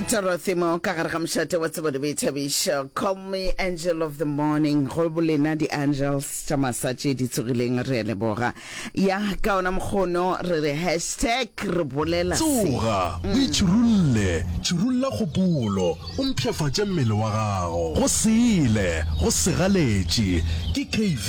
torothimo ka gare ga mošate wa tsebo le boithabišo call me angel of the morning go bolena di-angels tša masa tše di tsogileng re a leboga ya ka ona mokgono re re hashtag re bolela se tsoga o itšhirulle tširulla kgopolo o mpshafatše mmele wa gago go sele go segaletše ke kv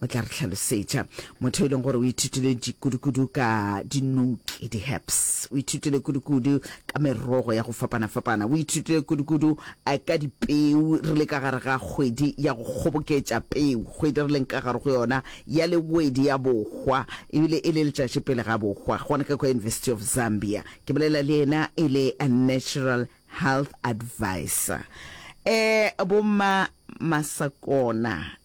o tla re hlalosetša motho e leng gore o ithutile dikudukudu ka dinouki di-herbs o ithutile kudukudu ka merogo ya go fapana-fapana o ithutile kudukudu eh, ka dipeu re le ka gare ga kgwedi ya go kgoboketša peu kgwedi re leng ka gare go yona ya lewedi ya bohwa ebile e le letšatši pele ga bohwa gona ka kwa university of zambia ke bolela le ena e le a natural health advisor eh bomma masakona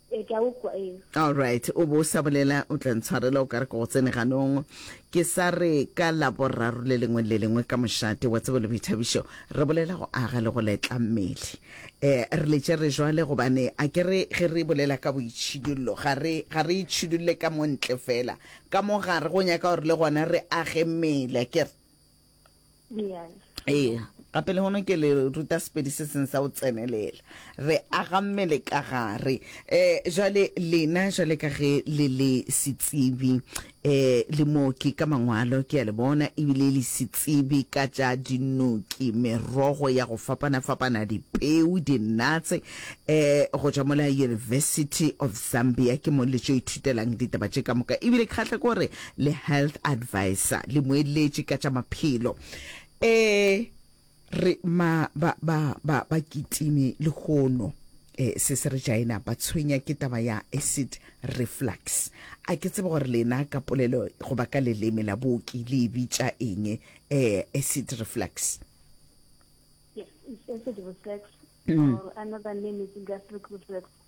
Ee, ke a go kwa, ee. Alright, o bo o sa bolela, o tla ntshwarela o ka re ke go tsene ganong. Ke sa re ka Laboraro le lengwe le le lengwe ka mošate wa Tsebo le Boithabišo re bolela go aga le go letla mmele. Eh, re letše re jwale gobane a ke re ge re bolela ka boitšhidullo ga re, ga re itšhidulle ka mo ntle feela, ka mo gare go nyaka gore le gona re age mmele, a ke re? ee gape le gone ke le ruta sepedi se seng sa go tsenelela re aga mmele ka gare um jale lena jale ka ge le le setsibi um eh, le mooki ka mangwalo ke a le bona ebile le setsibi ka tša dinoki merogo ya go fapana-fapana dipeu dinatse um go tšwa mola university of zambia ke mo le tšo ithutelang ditaba tše ka moka ebile kgahle kore le health advisor le moeletši ka tša maphelo e re ma ba ba ba ba kitime lehono eh, se se re jaena ba tshwenya ke taba ya acid reflux a ke tsebe gore lena ka polelo goba ka leleme la booki le e bitša eng eh, acid reflux Yes, it's acid reflux, or another name is gastric reflux.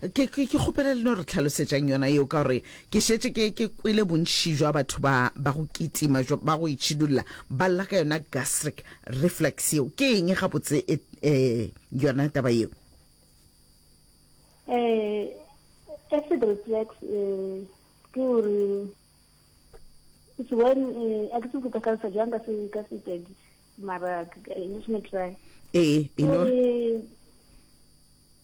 Ke, ke, ke kgopela le no re tlhalosetšang yona yeo, ka gore ke šetše ke, ke kwele bontši bja batho ba, ba go kitima bjo, ba go itšhidulla, ba lla ka yona gastric reflux yeo. Ke eng gabotse e, e, yona taba yeo? Eh, acid reflux, eh, ke gore, it's when, eh, a ke tsebe go ka tlhalosa jang ka se, ka Sepedi, mara, eh, let me try. Ee, e no. Ke gore,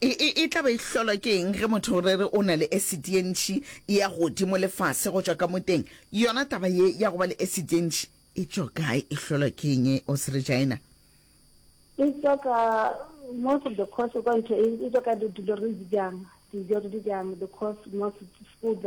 E, e, e tla be e hlolwa ke eng ge motho re re o na le esiti ye ntši ya godimo le fase go tšwa ka mo teng? Yona taba ye ya go ba le esiti ye ntši e tšwa kae? E hlolwa ke eng, o se Regina? E tswa ka, most of the course kwa ntle, e tswa ka dilo re di jang, dijo re di jang, the course, most food that